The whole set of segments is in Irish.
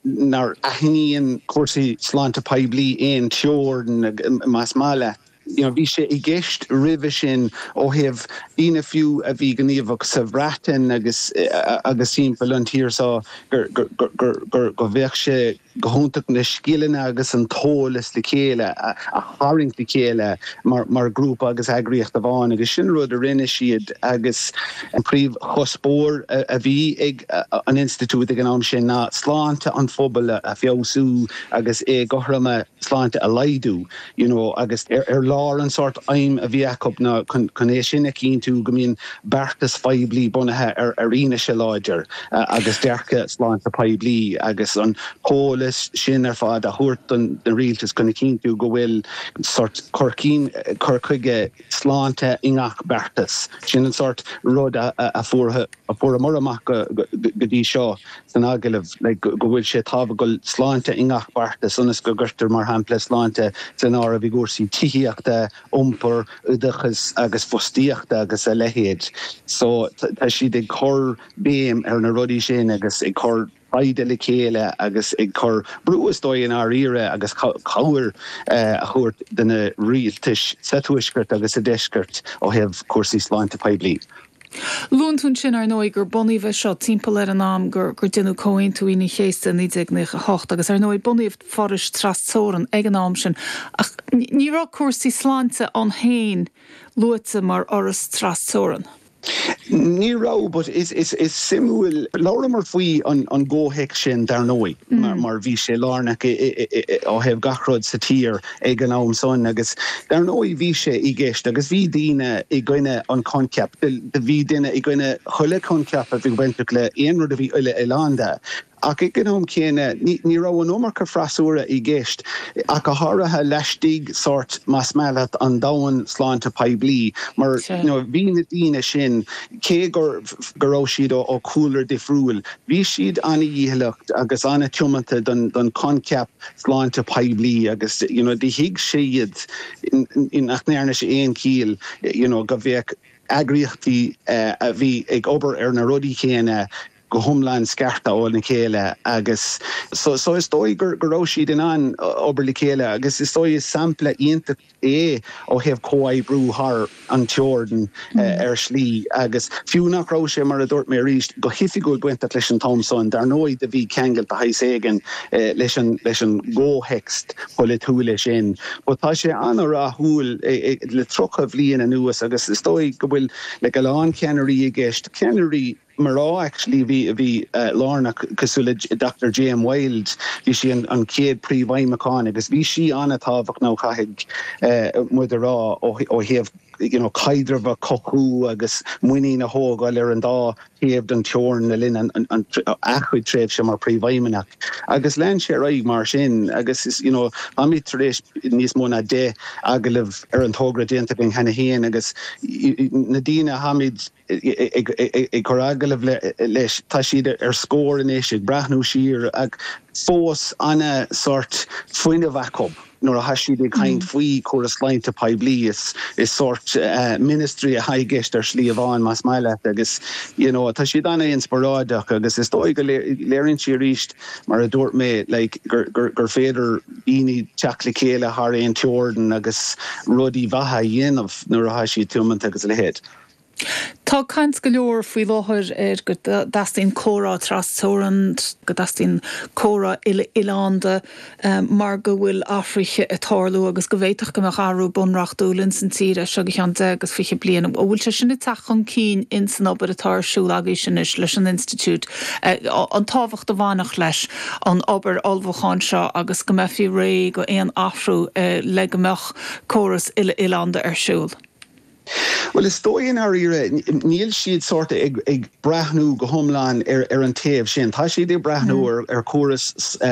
nár aithníonn cúrsaí sláinte poiblí aon teorainn, más maith leat. You know, bhí sé i gceist roimhe sin ó thaobh daoine fiú a bhí gníomhach sa Bhreatain agus, agus timpeall an tír seo gur, gur, gur, go mbeadh sé go hiontach na scileanna agus an t-eolas le chéile a, a tharraingt le chéile mar, mar ghrúpa agus eagraíocht amháin agus sin an rud a rinne siad agus, An príomhchuspóir a bhí ag an Institiúid ag an am sin ná sláinte an phobail a feabhsú agus éagothroime sláinte a laghdú, you know, agus ar lár an sórt aidhm a bhí acu ná chun é sin a chinntiú go mbíonn beartais phoiblí bunaithe ar fhianaise láidir agus dearcadh sláinte poiblí agus an t-eolas sin ar fad a thabhairt don rialtas chun a chinntiú go bhfuil sórt cur chuige sláinte i ngach beartas. Sin an sórt rud a fuaireamar amach go dtí seo san agallamh, go bhfuil sé tábhachtach sláinte i ngach beartas ionas go gcuirtear, mar shampla, sláinte san áireamh i gcúrsaí tithíochta, iompar, oideachais agus fostaíochta agus a leithéid. So, tá siad ag cur béim ar na rudaí sin agus ag cur. taighde le chéile agus ag cur brú, is dóigh, i ndáiríre agus cabhair a thabhairt do na rialtais sa Tuaisceart agus sa Deisceart ó thaobh cúrsaí sláinte poiblí. Luann tú ansin, ar ndóigh, gur bunaíodh é seo timpeall ar an am gur deineadh Comhaontú Aoine an Chéasta i 1998 agus, ar ndóigh, bunaíodh forais tras-teorann ag an am sin ach ní raibh cúrsaí sláinte ann fhéin luaite mar fhoras tras-teorann. Ní raibh, but is suimiúil. Labhramar faoi an gcomhthéacs sin dar ndóigh mar bhí sé lárnach ó thaobh gach rud sa tír ag an am san agus dar ndóigh bhí sé i gceist agus bhí daoine i gcoinne an choincheap, bhí daoine i gcoinne chuile choincheap a bhí bainteach le aon rud a bhí uile-oileánda. Ach ag an am céanna, ní raibh an iomarca freasúra i gceist, ach go háirithe laistigh sórt más maith leat an domhan sláinte poiblí, mar bhí na daoine sin, cé go raibh siad ó chúlra difriúil, bhí siad ana-dhícheallach agus an-tiomanta don choincheap sláinte poiblí agus you know do thuig siad nach ndearna sé aon chiall you know go bheadh eagraíochtaí a bhí ag obair ar na rudaí céanna, go hiomlán scartha óna chéile agus so is dóigh go raibh siad in ann obair le chéile agus is dóigh is sampla iontach é ó thaobh comhoibriú thar an teorainn ar shlí agus fiú nach raibh sé, mar a dúirt mé arís, go hoifigiúil bainteach leis an am san, dar ndóigh do bhí ceangal de shaghas éigin leis an gcomhthéacs polaitiúil sin. But tá sé an-rathúil le tríocha bhliain anuas agus is dóigh go bhfuil like a lán ceannairí i gceist, ceannairí, mná actually a bhí a bhí lárnach cosúil le Doctor Jane Wilde, bhí sí an an chéad príomhfheidhmeannach agus bhí sí an-tábhachtach chaithfidh muid a rá ó ó thaobh you know caidreamh a cothú agus muinín a thógáil ar an dá thaobh den teorainn le linn an an a cuid tréimhse mar phríomhfheidhmeannach agus lean sé ar aghaidh mar sin agus is you know táimid tar éis níos mó ná deich agallamh ar an togra déanta againn cheana féin agus na daoine atáimid ag cur agallamh leis, tá siad ar scor anois, ag breathnú siar, ach fós an-sort fuinneamh acu nuair atá siad ag caint faoi córas sláinte poiblí, is sort ministry atá i gceist ar shlí amháin más maith leat agus you know tá siad an-inspioráideach agus is dóigh go léiríonn sé arís mar a dúirt mé like gur féidir daoine teacht le chéile thar aon teorainn agus rudaí maithe a dhéanamh nuair atá siad tiomanta agus a leithéid. Tá caint go leor faoi láthair ar go dteastaíonn comhrá tras-teorann, go dteastaíonn comhrá uile-oileánda mar go bhfuil athruithe ag tarlú agus go bhféadfadh go mbeadh athrú bunreachtúil ins an tír as seo go ceann deich agus fiche bliain. An bhfuil sé sin ag teacht chun cinn ins an obair atá ar siúl agaibhse anois leis an Institiúid, an tábhacht a bhainfeadh leis an obair ullmhúcháin seo agus go mbeifí réidh d'aon athrú le go mbeadh córas uile-oileánda ar siúl? Bhuel, is dóigh i ndáiríre, níl siad sórt ag breathnú go hiomlán ar an taobh sin. Tá siad ag breathnú ar chóras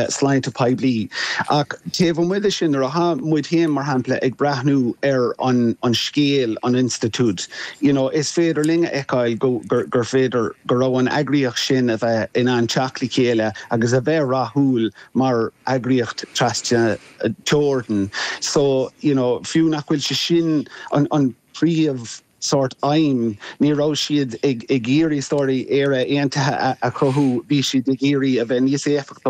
sláinte poiblí. Ach taobh amuigh de sin, nuair atá muid féin, mar shampla, ag breathnú ar an scéal, an institiúid, you know, is féidir linn a fheiceáil gur féidir go raibh an eagraíocht sin a bheith in ann teacht le chéile agus a bheith rathúil mar eagraíocht tras. teorann, so you know fiú nach bhfuil sé sin an an príomh sort aidhm, ní raibh siad ag ag iarraidh sort Éire Aontaithe a a chothú, bhí siad ag iarraidh a bheith níos éifeachtaí,